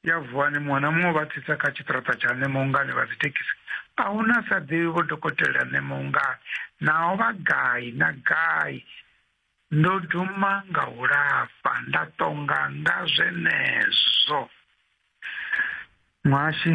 ya vuwani muṅwe na muṅwe vha tsitsa kha tshiṱiraṱa tsha ṋemongani vha dzithekhisi a hu na sa ḓivhi vho dokotela ṋemongani naho vha gai na gai ndo duma nga u lafha nda tonga nga zwenezwo muhashi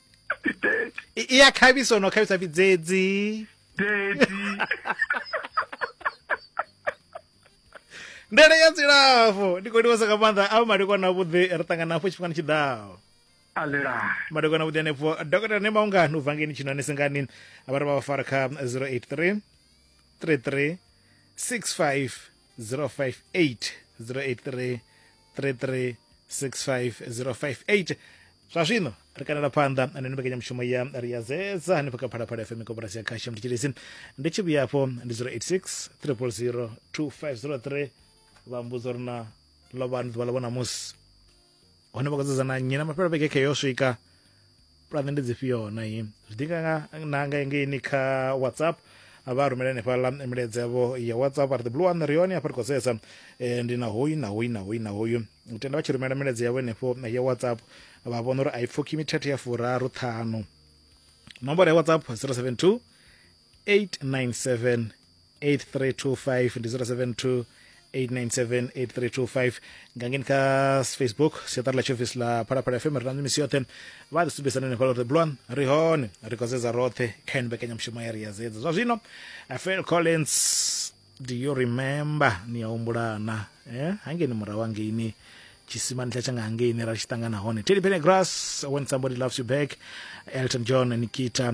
I- i ya khavhiso no khavhisa vhidzedzi ndele ya dzilafho ndi khou livhasa nga maanḓa a madekwana avhuḓi ri ṱangana hafho tshifhingani tshi ḓaho alelani madekwana avhuḓi anefho dokotela ne maungani u vangeni tshino ane sengani vha ri vha vha fara kha 083 33 65 058 083 0865058 zwa zwino ri kanela phanḓa na ino mbekanyamushumo ya ri ya zedza hanefha kha phalaphala fm koporasi ya khasha mutshilisi ndi tshi vhuya afho ndi 086 300 2503 vha mbudzo ri na lovhani ḓuvha ḽa vho namusi hone vha khou dzudzana nnyi na mafhelo vhege khe yo swika pulane ndi dzifhio na iyi zwi ḓi nga na nga engeini kha whatsapp vha rumela henefhaḽa milaedza yavho ya whatsapp ari the blue one ri hone hafha ri khou sedza eh, ndi na hoyu na hoyu na hoyu na hoyu u tenda vha tshi rumela milaedza yavho henefho ya whatsapp vha vhona uri a i pfukhi mithethe ya furaru ṱhanu nomboro ya whatsapp 072 897 8325 ndi 072 897 8325 nga ngeni kha facebook siaṱari ḽa tshiofisi ḽa phalaphala fm ri na misi yoṱhe vha ri sumbedzisa nene fhala uri bulwan ri hone ri khou zedza roṱhe kha ino mbekanyamushumo ya ri ya zedza zwa zwino eh, phil collins do you remember ni a humbulana eh? hangeni murahu hangeini tshisimani tsha tshanga hangeini ra tshi ṱangana hone teddy pennegrass when somebody loves you back elton john nikita